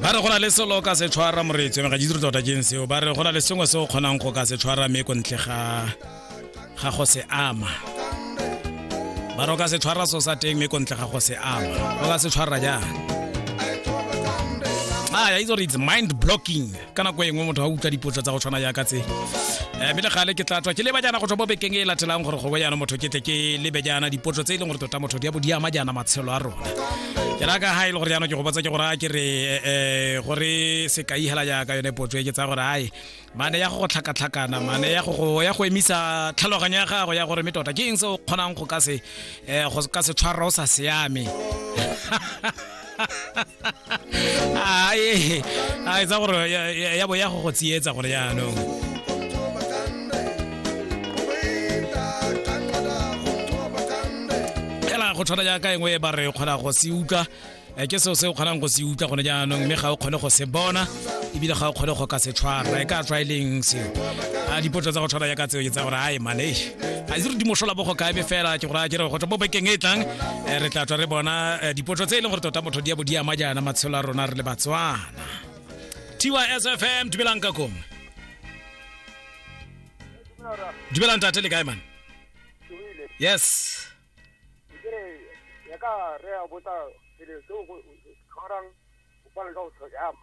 ba re go na le selo o ka se tshwara moreetswe ga ditiro tota keng seo ba re go na le sengwe se o kgonang go ka se tshwara mme ko ntle ga ga go se ama ba re o ka se tshwara so sa teng mme ko ntle ga go se ama o ka se tshwara jang a ya itse gore it's mind blocking ka nako e nngwe motho a utlwa dipotsa tsa go tshwana yaka tse eh, mme le gale ke tla tswa ke leba jaana go tswa mo bekeng e latelang gore gongwe jaana motho ke tle ke lebe jaana dipotso tse e leng gore tota motho di a bo di ama jaana matshelo a rona ke raka ga e le gore jaana ke go botsa ke gore a ke re eh, eh, gore se ka ihela jaaka yone potso e ke tsaya gore ae mane ya go go tlhakatlhakana mane ya go ya go emisa tlhaloganyo ya gago ya gore mme tota ke eng se o kgonang go ka se go ka se tshwarwa o sa siame ae a etsa gore ya- ya ya bo ya go go tsietsa gore jaanong fela go tshwana jaaka engwe e ba re kgona go se utlwa eh, ke seo se o kgonang go se utlwa gone jaanong mme ga o kgone go se bona ebile ga o kgone go ka se tshwara e ka tswa e leng seo a dipotso tsa go tshwana jaaka tseo ke tsa gore ae manesh ga itse re di mosola bogo kae fela ke go raya kere go tla mo bekeng e tlang eh, re tla tswa re bona eh, dipotso tse e leng gore tota motho di ya bo di ama jaana matshelo a rona re le batswana tysfm dumelang ka kong dumelang tate le kae man yes ya ka re a botsa pele seo go tshwarang go pala ka go tlhoyama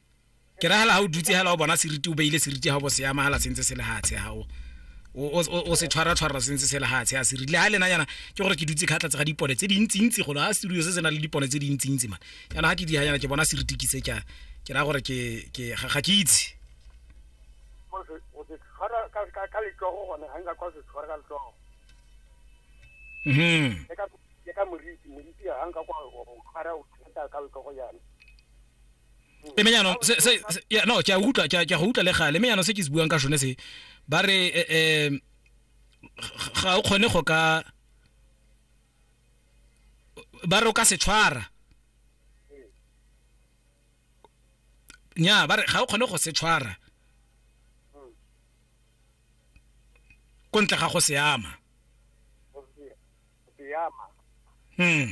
ke ragala ga o dutse hela o bona seriti o beile seriti ga bo se amagala sentse se lehatshe ga o o se tshwara tshwara sentse se lehatshe a serile ga lena yana ke gore ke dutse kgatlha tse ga dipone tse dintsintsi golo ga studio se se na le dipone tse dintsintsi man yana ga ke di yana ke bona seriti ke se ka ke raya gore ke ke ga ke itse mhm ka moriti moriti ga nka kwa o tshwara o tshwara ka letsogo yana e me jaanong se- se- se- ya, no ke a utlwa ke a- ke a go utlwa le gale mme jaanong se ke se buang ka sone se ba re eh, eh, g- ga o kgone go ka ba re o ka se tshwara nya ba re ga o kgone go se tshwara ko ntle ga go se ama Go se- go se ama. hmm